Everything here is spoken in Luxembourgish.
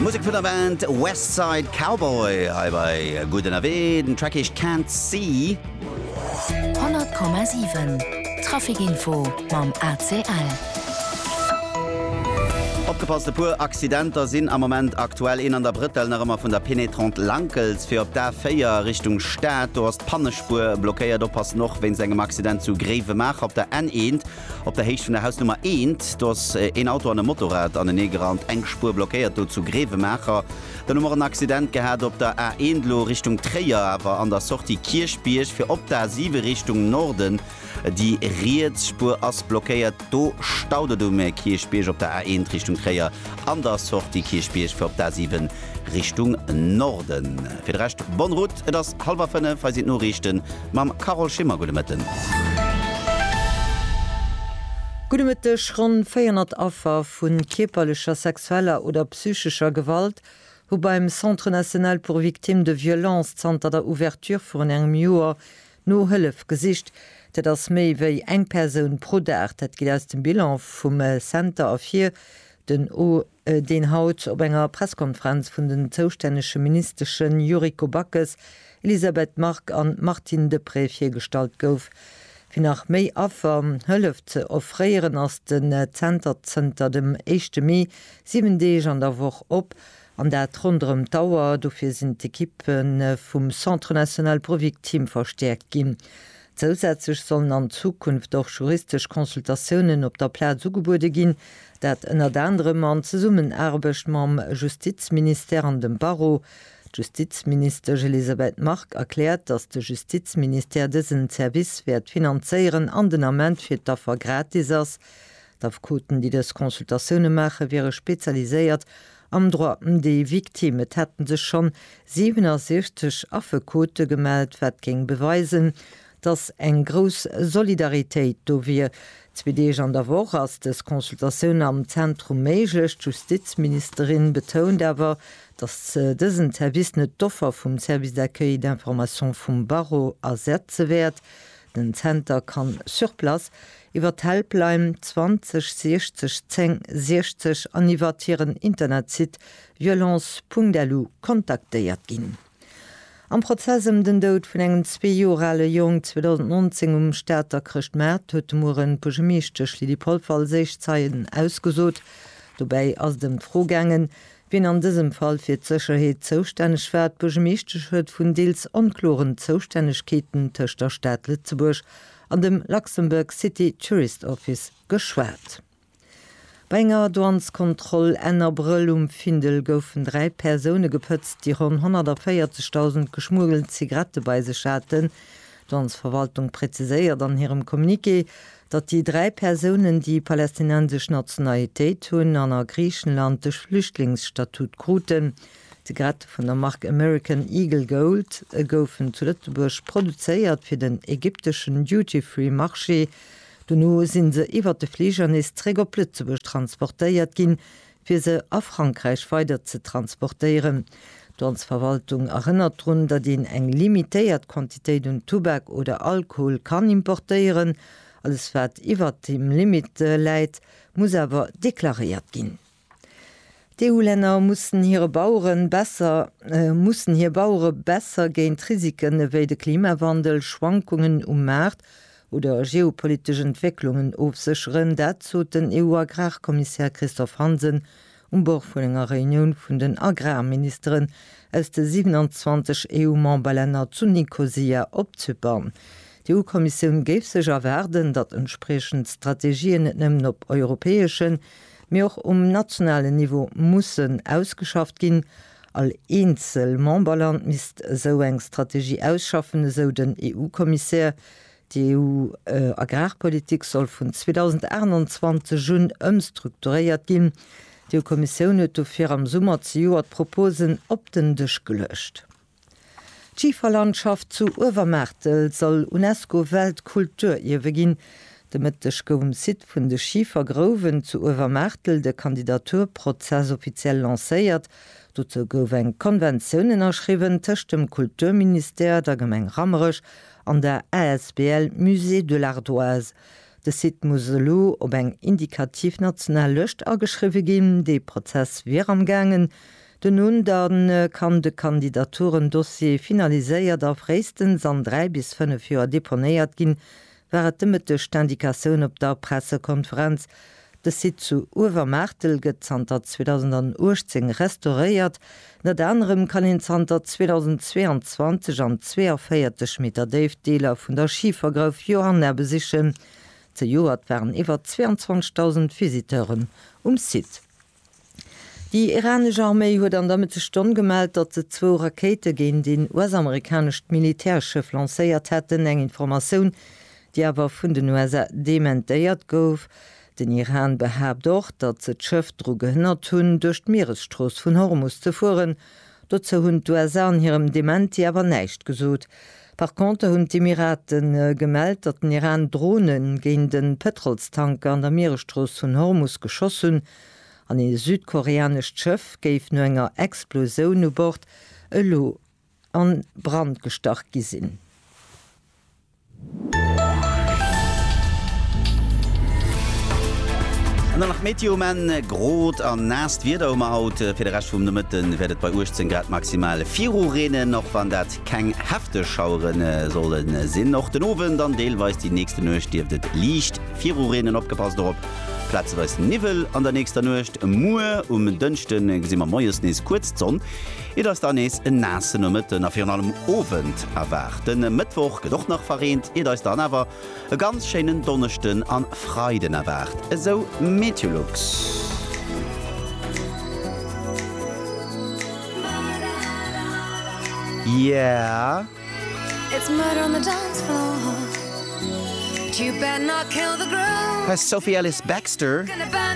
Musek vun der Band West Side Cowboy hei bei Gutt ënnerwee. Den Track heescht Can't See. 100,7 Trafic Info mam ACL. Opgepasst, e puer Accidenter sinn am Moment aktuell. Een an der Brëttel, nach ëmmer vun der Pénétrante Lankels fir op d'A4 Richtung Stad. Do ass d'Pannespuer blockéiert. Oppassen och wéinst engem Accident zu Gréiwemaacher op der N1. Op der Héicht vun der Hausnummer eent, do ass een Auto an e Motorrad anenee gerannt, eng Spuer blockéiert do zu Grevenmacher. Dann hu mer en Accident gehat op der A 1 elo Richtung Tréier, awer an der Sortie Kierchbierg fir op d'A 7 Richtung Norden. Déi riets Spuer ass blockéiert, do staut et um Kierchbierg op der A 1 Richtung Tréier an der Sortie Kierchbierg fir op d'A 7 Richtung Norden. Fir de Rescht, bonne route, et ass hallwer fënnef, hei sinn d'Noriichten. Mam Carole Schimmer, gudde Mëtten. Gudde Mëtteg. Ronn 400 Affer vu kierperlecher, sexueller oder psychescher Gewalt hu beim Centre National pour Victimes de Violences zanter der Ouverture virun engem Joer no Hëllef gesicht. Dat ass méi wéi eng Persoun pro Dag. Dat geet aus dem Bilan vum Center ervir, Den O, deen haut op enger Presskonferenz vun den zoustännege Ministeschen Yuriko Backes, Elisabeth Margue an Martine Deprez virgestallt gouf. Fir nach méi Affer Hëllef ze offréieren ass den Zenter zënter dem éischte Mee 7 Deeg an der Woch op, an dat ronderëm d'Auer. Dofir sinn d'Ekippe vum Centre National Brevik Team verstäerkt ginn. Zousätzlech sollen an Zukunft och juristesch Consultatiounen op der Plaz ugebuede ginn, dat ënnert anerem an Zesummenaarbecht mam Justizministère an dem Barreau. D'Justizministesch Elisabeth Margue erkläert, datt de Justizministère dësen Service wäert finanzéieren an den Ament fir d'Affer gratis ass. D'Affekoten, déi dës Consultatioune maachen, wiere spezialiséiert Am Droit des victimes, et hätte sech schonn 67 Affekote gemellt, wat géing beweisen, datt eng grouss Solidaritéit do wier. Zwee Deeg an der Woch ass dës Consultatioun am Zentrum méiglech. D'Justizministerin betount awer, datt dësen Service net d'Offer vum Service d'accueil et d'information vum Barreau ersetze wäert. Den Zenter kann sur place, iwwer d'Helpline 20 60 10 60 an iwwert hiren Internetsite violence.lu kontaktéiert ginn. Am Prozess ëm den Doud vun engem zwee Joer ale Jong 2019 um Stater Chrëschtmaart huet de Mueren d'Buergermeeschtesch Lydie Polfer als éischt Zeien ausgesot. Dobäi ass et ëm d'Fro gaangen, Wien an dësem Fall fir d'Sécherheet zoustänneg war, d'Buergermeeschtesch huet vun deels onkloren Zoustännegkeeten tëscht der Stad Lëtzebuerg an dem Luxembourg City Tourist Office geschwat. Bei enger Douaneskontroll Enn Abrëll um Findel goufen dräi Persoune gepëtzt, déi ronn 140.000 geschmuggelt Zigarette bei sech haten. D'Douanesverwaltung präziséiert an hirem Communiqué, datt déi dräi Persounen, déi palästinensesch Nationalitéit hunn an a Griichenland de Flüchtlingsstatut kruten, Zigarette vun der Mark American Eagle Gold, goufen zu Lëtzebuerg produzéiert fir den ägypteschen Duty-Free Marché. Dono si se iwwer de Fliger nees zréck op Lëtzebuerg transportéiert ginn, fir se a Frankräich weider ze transportéieren. D'Landsverwaltung erënnert drun, datt een eng limitéiert Quantitéit un Tubak oder Alkohol kann importéieren. Alles wat iwwert deem Limit läit, muss awer deklaréiert ginn. D'EU-Länner mussen hire Bauere besser mussen hir Bauere besser géint Risiken ewéi de Klimawandel, Schwankungen um Maart oder geopolitesch Entwécklungen ofsécheren, dat sot den EU-Agrarkommissär Christophe Hansen um Bord vun enger Reunioun vun den Agrarministeren aus de 27 EU-Memberlänner zu Nikosia op Zypern. D'EU-Kommissioun géif sech erwaarden, datt entspriechend Strategien net nëmmen op europäeschen, mee och um nationalen Niveau mussen ausgeschafft ginn. All eenzel Memberland misst esou eng Strategie ausschaffen, esou den EU-Kommissär. D'EU-Agrarpolitik soll vun 2028 un ëmstrukturéiert ginn. D'EU-Kommissioun huet dofir am Summer zejoert d'Proposen op den Dësch geluecht. D'Schiferlandschaft zu Uewermaartel soll UNESCO-Weltkulturierwe ginn. De Mëtteg gouf um Site vun de Schifergrouwen zu Uewermaartel de Kandidaturprozess offiziell lancéiert. Dozou gouf eng Konventioun ënnerschriwwen tëscht dem Kulturministère, der Gemeng Rammerech an der asbl Musée de l'Ardoise. De Site muss elo op eng indikativ national Lëscht ageschriwwe ginn. Dee Prozess wier am gaangen. Duerno dann kann de Kandidaturen-Dossier finaliséiert a fréistens an dräi bis fënnef Joer deponéiert ginn, war et de Mëtteg d'Indikatioun op der Pressekonferenz De Site zu Uewermaartel gëtt zanter 2018 restauréiert. Ënnert anerem kann een zanter 2022 an 42 Meter Déift Deeler vun der Schifergrouf Johanna besichen. Zejoert waren iwwer 22.000 Visiteuren um Site. Déi iranesch Arméi huet an der Mëtteg Stonn gemellt, datt se zwou Rakéite géint een US-amerikanescht Militärschëff lancéiert hätten, eng Informatioun, déi awer vun den USA dementéiert gouf. Den Iran behaapt och, datt se d'Schëff dru gehënnert hunn, duerch d'Mieresstrooss vun Hormus ze fueren. Dozou hunn d'USA an hirem Dementi awer näischt gesot. Par contre hunn d'Emirate gemellt, datt den Iran Drone géint e Pëtrolstanker an der Mieresstrooss vun Hormus geschoss hunn an ee südkoreanescht Schëff géif no enger Explosioun u Bord elo a Brand gestach gi sinn. An dann nach d'Meteo um Enn, Grot a naasst Wieder hu mer haut. Fir de Rescht vum Nomëtte wäert et bei 18 Grad maximal virureenen, och wann dat. Keng hefteg Schauere solle sinn. Och den Owend an deelweis déi nächste Nuecht dierft et liicht virureenen. Opgepasst dorop, plazeweis Niwwel an der nächster Nuecht. Muer um Dënschde gesi mer moies nees kuerz d'Sonn. Et ass da nees en naasse Nomëtten a virun allem Owend erwaart. De Mëttwoch gëtt och nach verreent, iert eis dann awer E ganz schéinen Donneschden an Freiden erwaart esou Meteolux. Yeah. Hei Sophie Ellis-Bextor.